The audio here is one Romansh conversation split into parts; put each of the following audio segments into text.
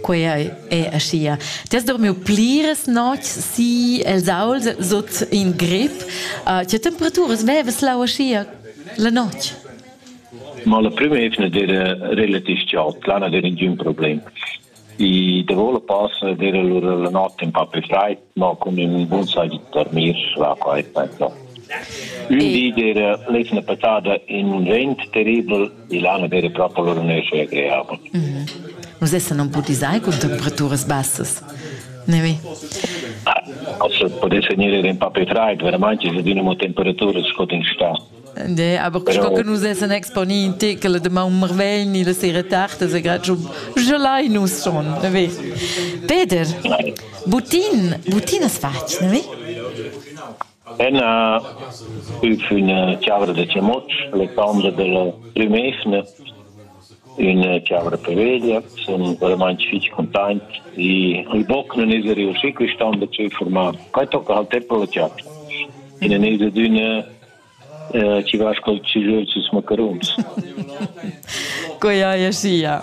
Quei ei, ei aschia. Ti has dormiu pliras notgs si el saul sut in grip. Uh, tge temperaturas vevas lau aschia la notg? Ma la prima evna era relativ chaud, là non era ningún problem. I davo la passa era allora la notte un po' più fred, ma con un buon sai di dormir là qua è peggio. Un di era l'evna passata in un vent terribile Milano era proprio loro nesce creava. Mm -hmm. Nus essan non putisai cun temperaturas bassas. Nevi? Also potesse venire in papetrait, veramente se dinamo temperature scot in sta. De, aber Però... che nus essan exponì in tekel de Mount Marvel ni le sere tard, se grad gelai nus schon, nevi? Peter, Butin, Butin has fatg, nevi? Ena üf üna chiavra da chamutsch, l'etambra della prümesna, üna chiavra per veglia, sun veramaing fich containt e il boc nun esa riuschi quist'an da tschüf furmar. Quai tocca al temp da la chiapcha. E nun esa adüna chi va col tschüjöl süs macaruns. Quai haja sia.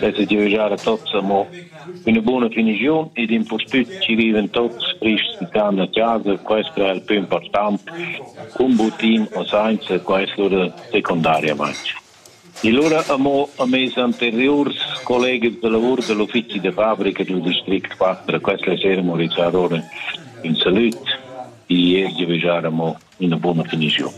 dat es giavüschà da tots amo üna buna finiziun ed impustüt chi vivan tots frists can a chasa, quest è il più important, cun butin o sainza questo da secundariamaing. E lura amo a mes anteriurs collegas da lavur da l'uffizi da fabrica dal district 4, questa sera mo rizzar ora ün salut e ier giavüschar amo ina buona finiziun.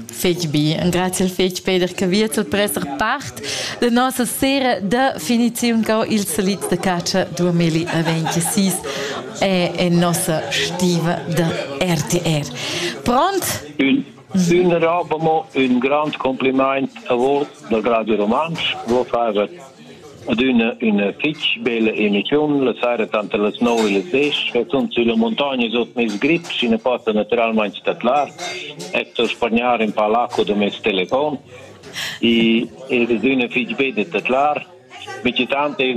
Fetg bien. Grazie fetg Peter che viet il presser part de nossa sera de finiziun co il salit de caccia 2026 e en nossa stiva de RTR. Pront? Un rabamo, un grand compliment a voi da Radio Romans. Voi fare adüna üna fich bella emissiun la saira tanter las nov e las desch sun sülla muntogna sut meis grip schi nu possa natüralmaing statlar e sto spagnar ün pa l'acua da meis telefon e ed es üna fich bella statlar. Michi tant es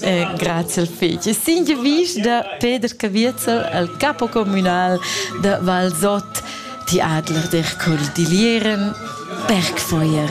Eh, grazie al feci. Sign vis da Peter Caviezel al capo communal da Valsot, ti adler der col dilieren Bergfeuer.